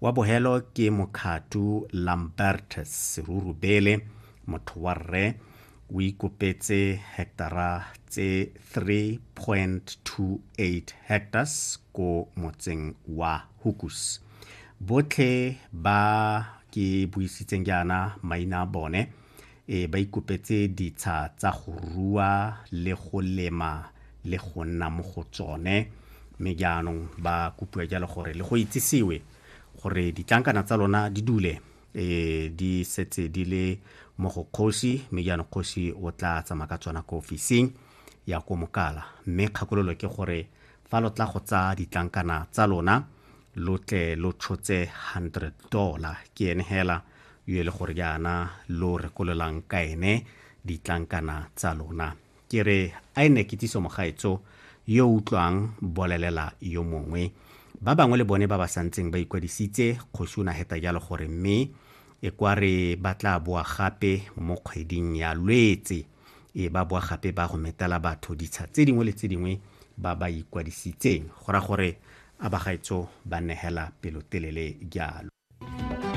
wa bohelo ke mokhatu lambert serurubele motho wa rre o ikopetse hectara tse 3.28 hectares ko motseng wa hukus botlhe ba ke buisitseng jaana maina a bone Ee, ba ikopetse ditsha tsa go rua le go lema le go nna mo go tsone. Mme jaanong ba kopiwa jalo gore le go itsisiwe gore ditlankana tsa lona di dule e di setse di le mo go kgosi mme jaanong kgosi o tla tsamaya ka tsona ko ofising ya ko mokala mme kgakololo ke gore fa lo tla go tsaya ditlankana tsa lona lo tle lo tshotse 100 dollar ke ene hela yo e le gore jaana lo rekololang ka ene ditlankana tsa lona ke re a e ne kitsiso mogaetso yo utlwang bolelela yo mongwe ba bangwe le bone ba ba santseng ba ikwadisitse kgosi o na heta jalo gore mme e kwa re ba tla boa gape mo kgweding ya lwetse e ba boa gape ba go metela batho ditsha tse dingwe le tse dingwe ba ba ikwadisitseng go ra gore a bagaetso ba negela pelotelele jalo